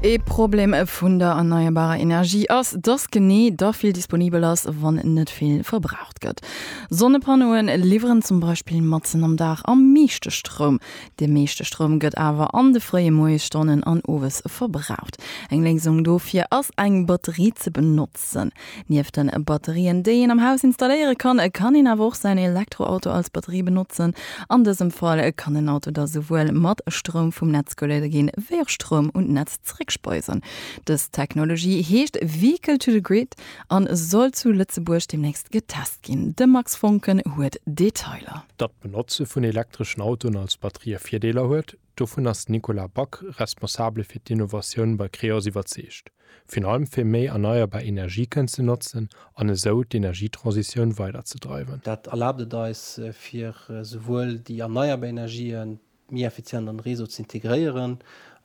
Ee Problem vun der erneierbarer Energie ass, dass genee da vill disponibel ass, wann net vill verbraucht gëtt. Sonnepannoe liwweren zum Beispill matzen am Dag am meeschte Stroum. De meeschte Stroum gëtt awer an de fréie Moiesstonnen an owes verbraucht. Eng Léisung dofir ass eng Batterie ze benotzen. Sënn. Nieft den Batterien déi een am Haus installéiere kann, kann een awer och säin Elektroauto als Batterie benotzen. An dësem Fall kann en Auto da souwuel mat Stroum vum Netz geluede ginn, wéi och Stroum un d'Netz zeréckspeisen. Dës Technologie heescht Vehicle to the Grid an soll zu Lëtzebuerg deemnächst getest ginn. De Max Voncken huet Detailer. Datt d'Benotze vun elektreschen Autoen als Batterië Virdeeler huet, Dovun ass den Nicolas Back, Responsabele fir d'Innovatioun bei Creos, iwwerzeegt. Virun allem fir méi erneierbar Energie kënnen ze notzen an esou d'Energietransitioun weider ze dreiwen. Dat erlaabt et eis, fir souwuel déi erneierbar Energien méi effizient an de Réseau ze integréieren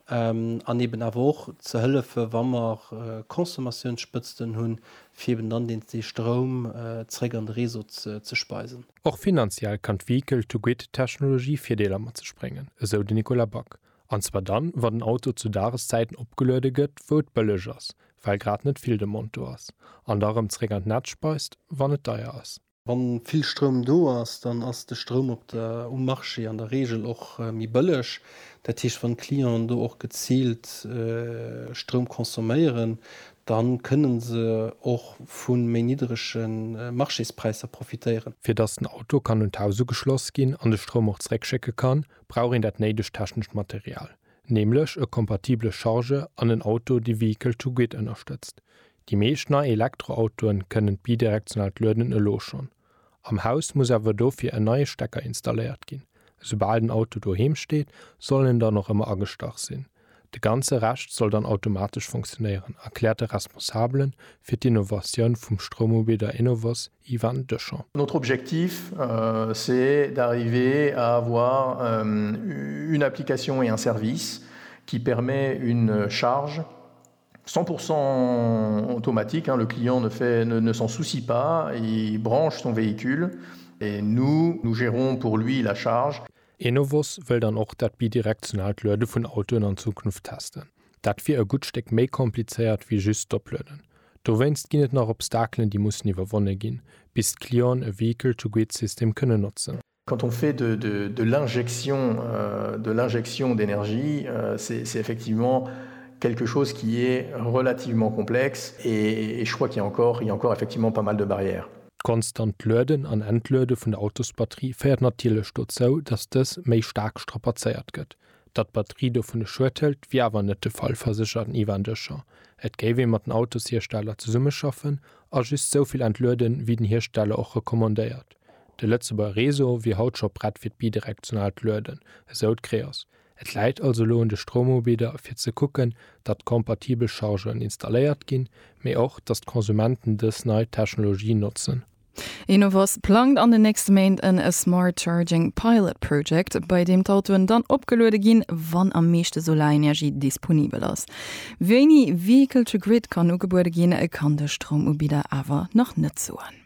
an eben awer och ze hëllefen, wa mer Consommatiounsspëtzten hunn, fir eben dann dee Stroum zeréck an de Réseau ze speisen. Och finanziell kann d'Vehicle-to-Grid-Technologie Virdeeler mat sech bréngen, esou de Nicolas Back, an zwar dann, wa den Auto zu Dageszäiten opgeluede gëtt, wou et bëlleg ass, well grad net vill Demande do ass, an da rëm zeréck an d'Netz speist, wann et deier ass. Wa vill Stroum do ass, dann ass de Stroum op der, um Marché an der Reegel och méi bëlleg. Dat heescht, wann d'Clienten do och geziilt Stroum consomméieren, Dann kënnen se och vun méi niddrege Marchéspräisser profitéieren. Fir dass den Auto kann un d'Haus ugeschloss ginn an de Stroum och zeréck schécke kann, brauch een dat néidegt technescht Material, nämlech e kompatibele Charge an en Auto dee Vehicle to Grid ënnerstëtzt. Déi meescht nei Elektroautoen kënnen d'bidirektionaalt Lueden elo schonn. Am Haus muss awer dofir en neie Stecker installéiert ginn. Esoubal den Auto doheem steet, soll en dann och ëmmer agestach sinn. De ganze Rescht soll dann automatesch funktionéieren, erkläert de Responsabele fir d'Innovatioun vum Stroumubidder Enovos, Ivan Deschamp. Notre objectif, c'est d'arriver à avoir une application et un service qui permet une charge. 100 pourcent automatique, le client ne fait, ne s'en soucie pas, il branche son véhicule et nous, nous gérons pour lui la charge. Enovos wëll dann och dat bidirektionaalt Luede vun Autoen an Zukunft testen. Dat wier e gutt Stéck méi komplizéiert wéi just d'Oplueden. Dowéinst ginn et nach Obstakelen, déi mussen iwwerwonne ginn, bis d'Clienten e Vehicle-to-Grid-System kënnen notzen. Quand on fait de de l'injection de l'injection d'énergie, c'est c'est effectivement quelque chose qui est relativement complexe et et je crois qu'il y a encore il y a encore effectivement pas mal de barrières. D'konstant Lueden an Entluede vun der Autosbatterie féiert natierlech dozou, datt dës méi staark strapazéiert gëtt. Datt d'Batterie dovun e Schued hëlt, wier awer net de Fall, verséchert den Ivan Deschamp. Et géif ee mat den Autoshiersteller zesummeschaffen a just souvill entlueden, wéi den Hiersteller och recommandéiert. De Lëtzebuerger Réseau wier haut scho prett fir d'bidirektionaalt Lueden, esou d'Creos. Et läit also elo un de Stroumubidder fir ze kucken, datt kompatibel Chargeuren installéiert ginn, mee och, datt d'Konsumenten dës nei Technologie notzen. Enovos plangt an den nächste Méint en Smart Charging Pilot Project, bei deem d'Autoen dann opgeluede ginn, wann am meeschte Solarenergie disponibel ass. Wéini Vehicle to Grid kann ugebuede ginn, kann de Stroumubidder awer nach net soen.